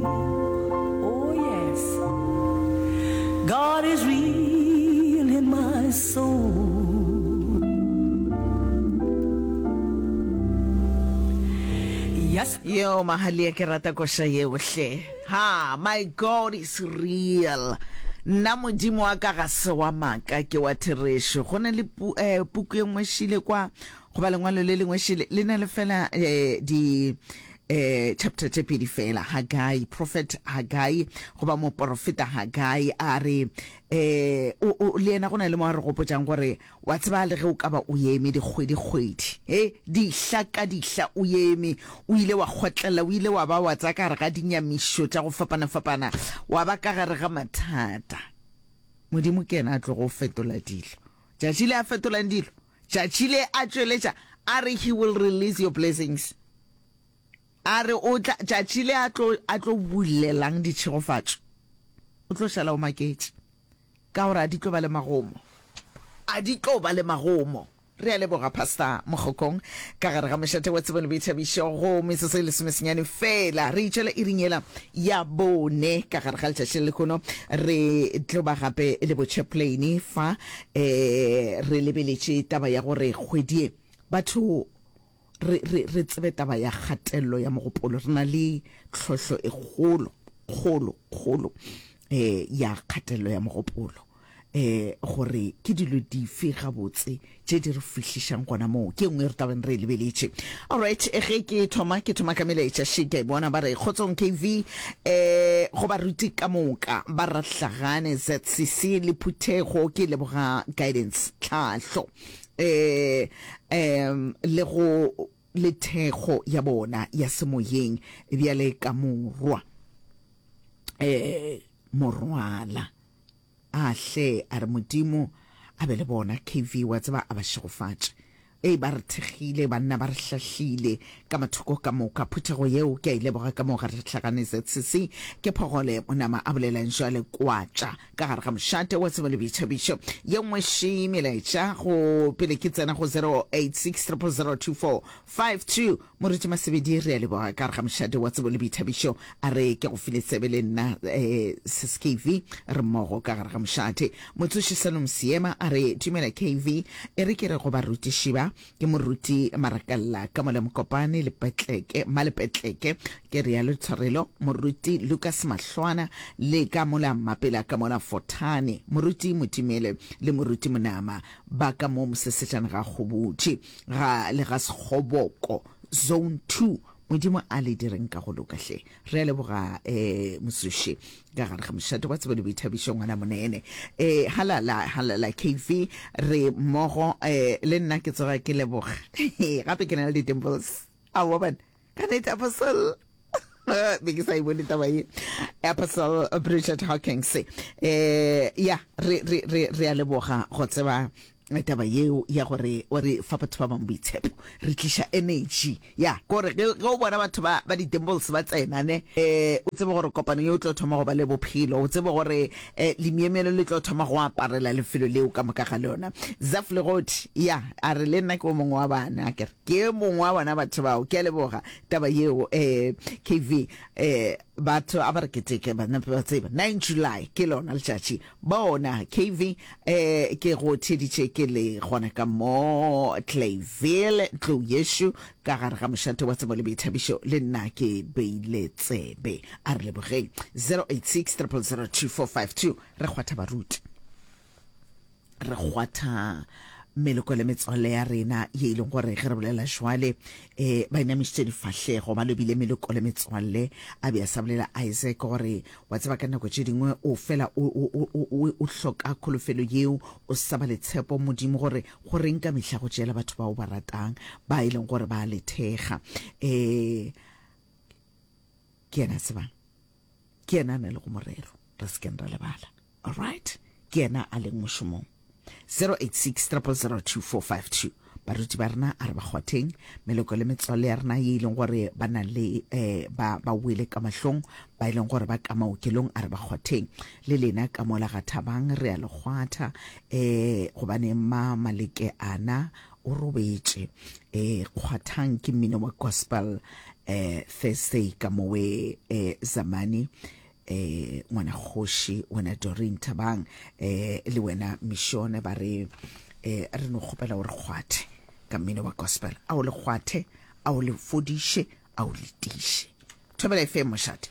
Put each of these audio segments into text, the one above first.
Oh yes God is real in my soul Yes Yo mahalia ke rata koša yeo hle. Ha, my God is real. Nna modimo wa ka ga se wa maka ke wa therešo. Go ne le pu, eh, puku e ngwe šile kwa Goba lengwalo le lengwe šele le na le fela eh, di eh, chapter tše pedi fela hagai prophet hagai goba moporofeta hagai a re eh, o, o, le yena go na le mo a re gopotšang gore wa tseba le ge o ka ba o eme dikgwedikgwedi e dihla ka dihla o eme o ile wa kgotlela o ile wa ba wa tsa ka gare ga dinyamišo tša go fapana-fapana wa ba ka gare ga mathata modimo ke yena a tlogo fetola dilo tšatši le a fetolang dilo Tšatši le a tšweletša a re he will release your blessings. A re o tla tšatši le a tlo a tlo bulelang ditšhegofatšo. O tlo šala o maketše. Ka gore a di tlo ba le magomo. A di tlo ba le magomo. Re a leboga Pastor Mogokong ka gare ga mošate wa tsebo le boithabišo go metsotso e lesomesenyane fela re itšwela iring yela ya bone ka gare ga letšatši le lehono re tlo ba gape le botšheplane fa E, re lebeletše taba ya gore kgwedi ye batho re, re, re tsebe taba ya kgatello ya mogopolo. Re na le tlhohlo e kgolo, kgolo, kgolo e, ya kgatello ya mogopolo. E, gore ke dilo dife gabotse tše di re fihlišang gona moo, ke nngwe re tla beng re e lebeletše. Alright, ge ke thoma, ke thoma ka melaetša še ke a e bona, ba re kgotsong KV. Ee, go baruti ka moka ba Rahlagane, ZCC le Phuthego, ke leboga Guidance Tlhahlo ee um le go le thekgo ya bona ya semoyeng bjale ka morwa ee morwala. A hle a re Modimo a be le bona. KV, Wa tseba, a ba šegofatše. Ee, ba re thekgile, banna ba re hlahlile ka mathoko ka moka. Phuthego yeo ke a e leboga ka moo ga re hlagane. ZCC, ke phogole, mo nama a bolela'ng bjale? Kwatša ka gare ga mošate wa tsebo le boithabišo. Ye nngwe še melaetša go pele ke tsena go 0860002452. Moruti Masebedi, re a leboga ka re ga mošate wa tsebo le boithabišo. A re ke go file tsebe le nna SKV re mmogo ka gare ga mošate. Motsoši Salom Seema a re dumela KV, e re ke re go barutiši ba, ke Moruti Marakalla, Kamole Mokopane, Lepetleke, Malepetleke, ke realo Tshwarelo, Moruti Lukas Mahlwana, le ka mola Mapela ka mola Fothane, Moruti Motimele le Moruti Monama ba ka mo Mosesejana ga Kgobutši. ga le ga Sekgoboko, Zone Two. Modimo a le direng ka go loka hle. Re a leboga um Mosuši ka gare ga mošate wa tsebo le boithabišo ngwana monene. um Halala, halala KV, re mmogo um le nna ke tsoga ke leboga gape ke na le di-dimples. Aowa bana. ka nete apostle be ke sa e bone taba e apostle bridget hawkins eh ya re re re re a leboga go tseba taba yeo ya gore o re fa batho ba bangwe boitshepo re tliša energy ya kore ge ge o bona batho ba ba di-dimbles ba tsena ne eh o tsebe gore kopano ye o tlo thoma go ba le bophelo o tsebe gore eh lemyemyelo le tlo thoma go aparela lefelo leo ka moka ga lona zaf legodi ya a re le nna ke o mongwe wa bana a kere Ke e mongwe wa bona batho bao. Ke a leboga taba yeo um KV. Um batho a ba re keteke ba nape ba tseba nine July ke lona letšatši bona KV. Um ke go theeditše ke le gona ka mo Clayville tlou yešo ka gare ga mošate wa tsebo le boithabišo le nna ke beile tsebe a re lebogeng 086 0002452 re kgwatha baruti. re kgwatha meloko le metswalle ya rena ye e leng gore ge re bolela jwale um ba inamišitše difahlego ba lobile meloko le metswalle a be a sa bolela isaac gore wa tseba ka nako tše dingwe o fela o hloka kholofelo yeo o saba letshepo modimo gore go reng ka mehla go tšeela batho bao ba ratang ba e leng gore ba lethega um ke yena tsebang Ke yena a na lego morero, re se keng ra lebala. Alright? Ke yena a leng mošomong. 086 000 2452 baruti ba rena a re ba kgwatheng meloko le metswalle ya rena ye e leng gore ba na le eh, ba ba wele ka mahlong ba e leng gore ba ka maokelong a re ba kgwatheng le lena ka mola ga thabang re a le kgwatha eh gobane ma maleke ana O robetše. E, kgwathang ke mmino wa gospel e, Thursday ka mowe e, Zamani e, ngwana kgoši wena Doreen Thabang e, le wena Mishone ba re e, re no kgopela gore kgwathe ka mmino wa gospel a o le kgwathe a o le fodiše a o letiše thobela e fe mošate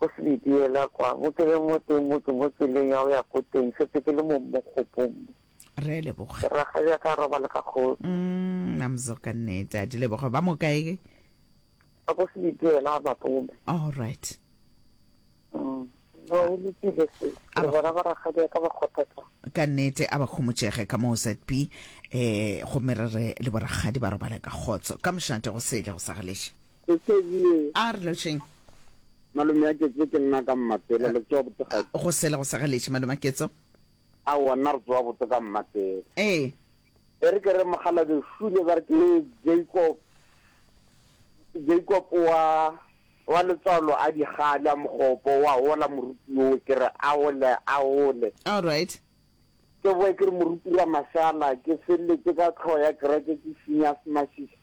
Go se be diela kwa mokeleng o tee mo ke mo tseleng ya go ya ko teng, setse ke le mong mo kgopong mo. Re a leboga. Ke rakgadi ya ka robale ka kgosi. Mm, Namzo ka nnete. A di leboga. Ba mo kae ke? Ba ko se be diela ba pome. All right. Mm. Ba o lokile se. Ke bona ba rakgadi ya ka ba kgothatsa. Ka nnete a ba khomotšege ka moo ZB eh go merere le borakgadi ba robale ka kgotso. Ka mošate go sele go sa galeše. Ke Kezie. A re lotšheng. Malome ya Ketso ke nna ka Mmatela, le tsoa bote ga? Go sele go sa galetše, Maloma Ketso. Aowa, nna re tsoa bote ka Mmatela. Ee. E re ke re mokgalabje Shule ba re ke Jacob, Jacob wa, wa letswalo a di gale a mokgopo, wa hola moruti yo, ke re a hole, a hole. All right. Ke boe ke re moruti Ramashala, ke felletše ka tlhoho ya kereke ke šinya semašiša.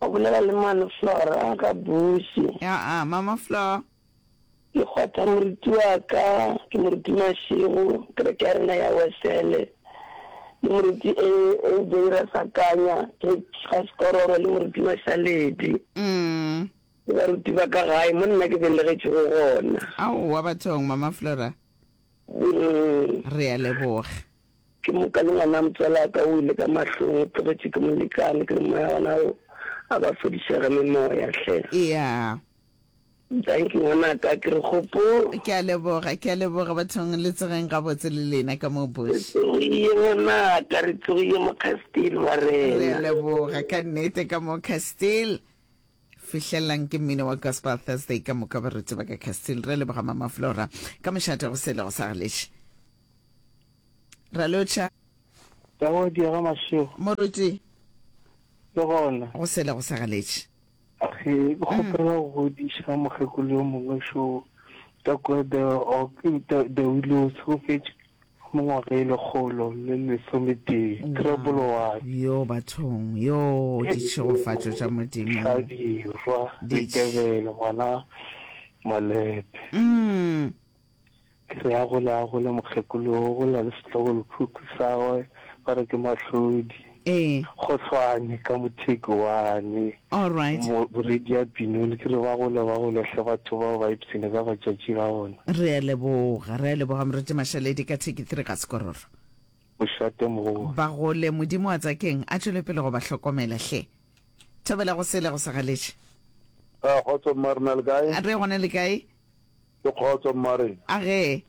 O bolela le mane Flora ka buši. Aa mama Flor. Ke kgwatha moruti wa ka, ke moruti Mashego, kereke ya rena ya Wesele, le moruti AJ Rasakanya, George Gasekororo le moruti Mashaledi. Umm. Ke baruti ba ka gae mo nna ke belegetšego gona. Aowa bathong mama Flora. Umm. Re a leboga. Ke moka le ngwana motswalaka o wele ka mahlong, o tlogetše ke molekane, ke re moya gona o a ba fodišega memoya hle. Eya. Dankie ngwanaka, ke re gopo. Ke a leboga, ke a leboga bathong, le tsogeng gabotse le lena ka moo Re Bush. tsogiye ngwanaka, re tsogiye mo Castile wa Re a rena. leboga ka nnete ka moo Castile. Fihlellang ke mmino wa Gospel Thursday ka moka baruti ba ka Castile. Re a leboga Mama Flora ka mošate go sele go sa galeše. Ralotšha. Ka go diega mašego. Moruti. Le gona. Go sele go sa galetše. Ge go kgopela go godiša mokgekolo yo mongwe šo ka kua The Oak, The, The Willows, go fetše mo ngwaga e lekgolo le lesometee. Treble one. Yo bathong, yo ditšhegofatšo tša Modimo. Hladirwa, Ditebele, ngwana Malepe. Mm. Ke re, Agole, agole, mokgekolo yo, go na le setlogolophukhu sa gwe, ba re ke Mahlodi. Ee. Go hlwane, ka motheke wane. All right. Mo, Boredi a binole. Ke re, Ba gole, ba gole hle batho bao ba ipshine ka matšatši a bona. Re a leboga, re a leboga, Moruti Mashaledi, ka Thiki Three ka Sekororo. O šate mokgowaa. Ba gole, Modimo a Tsakeng a tšwele pele go ba hlokomela hle. Thobela go sele go sa galetše. Kgotso, mma, re na le kae? Re gona le kae? Le kgotso, mmare? A ge.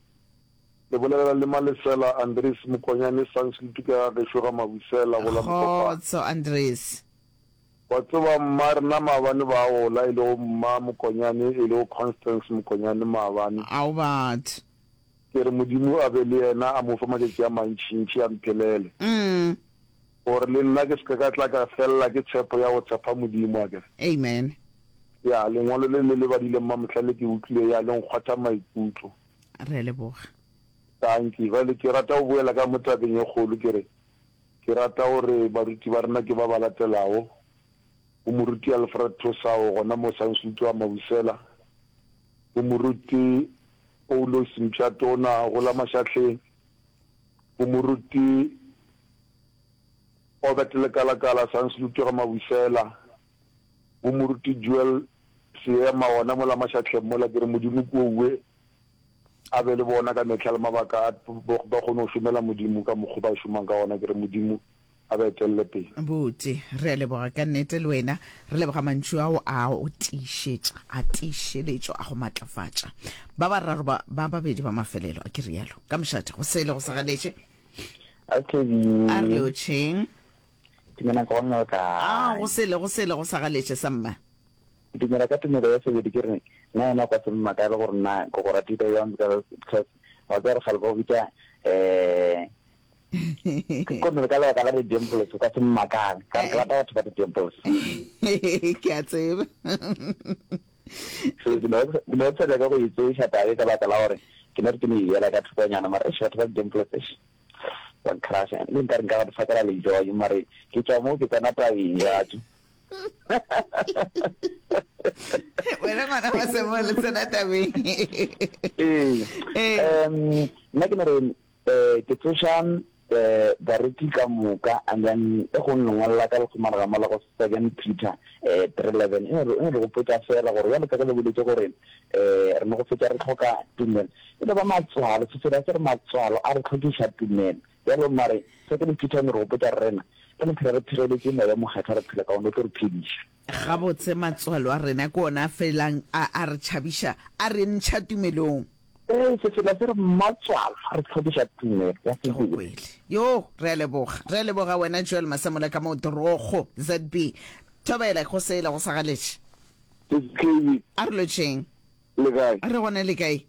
Le bolelela le Malesela, Andries, Mokonyane, Sanch le tuka ya gešo ga Mabusela, go la Mokopane. Kgotso, Andries. Wa tseba, mmare, na maabane ba gola, e lego mma Mokonyane, e lego Constance Mokonyane maabane. Ao, batho. Ke re Modimo a be le yena, a mo fe matšatši a mantšintši, a mphelele. Umm. Gore le nna ke se ke ka tla ka felela ke tshepo ya go tshepa Modimo, akere? Amen. Ya, lengwalo le le lebadileng mamohla le ke utlwile ya le nkgwatha maikutlo. Re a leboga. Dankie. Bjale ke rata go boela ka mo tabeng e kgolo, ke re, Ke rata gore baruti ba rena ke ba ba latelago, go Moruti Alfred Thosao gona mo Sansutu wa Mabusela, go Moruti Poulos Mpsha Tona go la Mašahleng, bo moruti Obert Lekalakala Sanslute ga Mabusela, bo moruti Joel Seema gona mola mašatlheng mola, ke re Modimo ke owe a be le bona ka mehla le mabaka a ba kgone go šomela Modimo ka mokgwa ba šomang ka gona, ke re Modimo a ba etelele pele. Buti, re a leboga ka nnete le wena. Re leboga mantšu ao a go tiišetša, a tiišeletšo, a go matlafatša. Ba bararo ba, ba babedi ba mafelelo, a ke realo? Ka mošate, go sele go sa ganetše. A ke di. A re le otšheng? Dumela nka bona le kae. A, go sele, go sele go sa ganetše sa mma. Dumela ka tumelo ya sebedi ke re, na yena o ka se mmakale gore na ke go ratile bjang, because, because, wa tseba re kgale ba go bitša, eh, gomme ka lebaka la di-dimples o ka se mmakang ka ke rata batho ba di-dimples ke a tseba so ke ne ke sa nyaka go itseša tabe ka baka la gore ke ne re ke ne yela ka thokonyana mara eš batho ba di-dimples eš one crush le nka re nka go difakela lejojo mare ke tswa moo ke tsena tabeng jatso wena ngwana wa semole tsena tabeng ee um nna ke ne re Ee, ke tsoša bareki ka moka, and then e go nno ngwalela ka lekgomarega mola go Second Peter three eleven, e no re gopotša feela gore bjalo ka ge le boletše gore re no go fetša re hloka tumelo, e no ba matswalo, Sefero a ke re matswalo a re hlokiša tumelo. Bjalo mare Second Peter e no re gopotša gore rena re no phela re phegeletše Moya o Mokgethwa, re phela ka wona, o tlo re phediša. Gabotse, matswalo a rena ke ona a felang a a re tšhabiša, a re ntšha tumelong. Ee, se fela se re matswalo a re tlhokiša tumelo ya sebele. Ke go kwele. Yoo, re a leboga. Re a leboga wena Joel Masemola ka mo Torogo, ZB. Thobela, go sele go sa galetše. Skv. A re lotšeng. Le kae? A re gona le kae?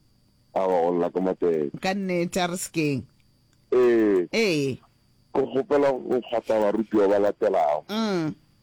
Aowa, go lla ka matšaedi. Ka nnete, a re se keng. Ee. Ee. Ke kgopela go kgotla barutiwa ba latelago. Umm.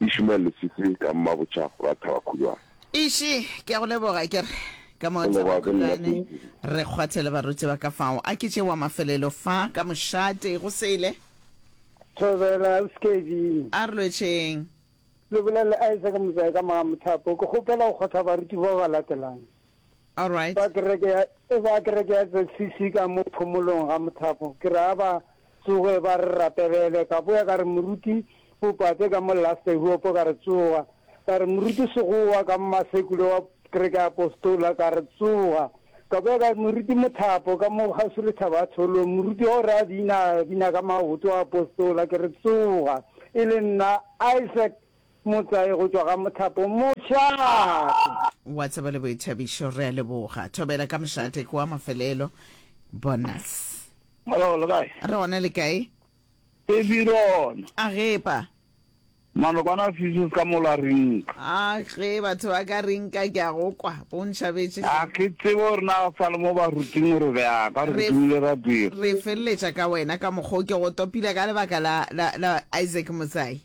Ishmael Leswiswi ka Mmabotjha ra Thabakhulwane. Ishi, ke a go leboga, ke re ka mo Thabakhulwane re kgwathe le baruti ba ka fao. A ke tše wa mafelelo fa ka mošate go sele. Thobela, Skevin. A re lwetšheng. Le bolela Isaac Motsai ka Magamothapo. Ke kgopela go kgwatha baruti bao ba latelang. Alright. Ba kereke ya, e ba kereke ya ZCC ka mo phomolong ga mothapo. Ke re a ba tsoge ba re rapelele. Ka boya ka re moruti Bopate ka mo last I hope ka re tsoga. Ka re moruti Segowa ka mmasekule wa kereke ya Apostola ka re tsoga. Ka boya ka re moruti Mothapo ka mo kgauswi le thaba ya Tholo. Moruti wa go re a bina, a bina ka maoto a Apostola ke re tsoga. E le nna Isaac. Motlae go tšwa ga mothapo mošate. Wa tseba le boithabišo re a leboga. Thobela ka mošate ke wa mafelelo. Bonus. Hello, le kae? Re gona le kae? Re birona. A gepa. Manokwana fisus ka mola rinka. A ge batho ba ka rinka ke a go kwa. Bo ntšhabetše. A ke tsebe gore na sa le mo ba ruting gore be a ka re dumile ra dira. Re feleletša ka wena ka mokgo ke go topile ka lebaka la la la Isaac Motsai.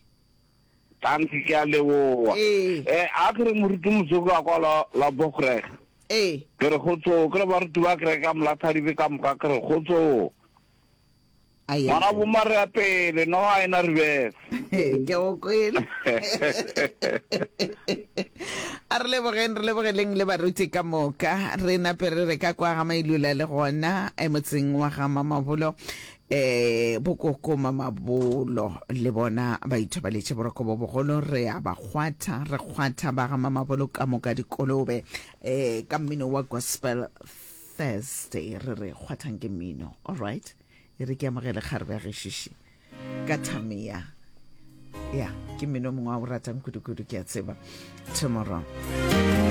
Thanks ke a leboa. Ee. Eh a kere moruti motsoko a kwa la la bogreg. Ee. Ke re khotso ke re baruti ba kere ka molathadibe ka moka ke re khotso. Aye. Ngwana bo mare ya pele no ha ena reverse. Ke go kwele. A re lebogeng re lebogeleng le baruti ka moka re nape re re ka kwa ga mailula le gona e motseng wa ga mamabolo E, bokoko mamabolo le bona ba ithobaletše boroko bo bogolo, re a ba kgwatha, re kgwatha ba ga mamabolo ka moka dikolobe. E, ka mmino wa Gospel Thursday re re kgwathang ke mmino. All right, e re ke amogele kgarebe ya gešiši ka thamea. Ya, ke mmino mongwe wa o ratang kudu-kudu, ke a tseba. Tomorrow.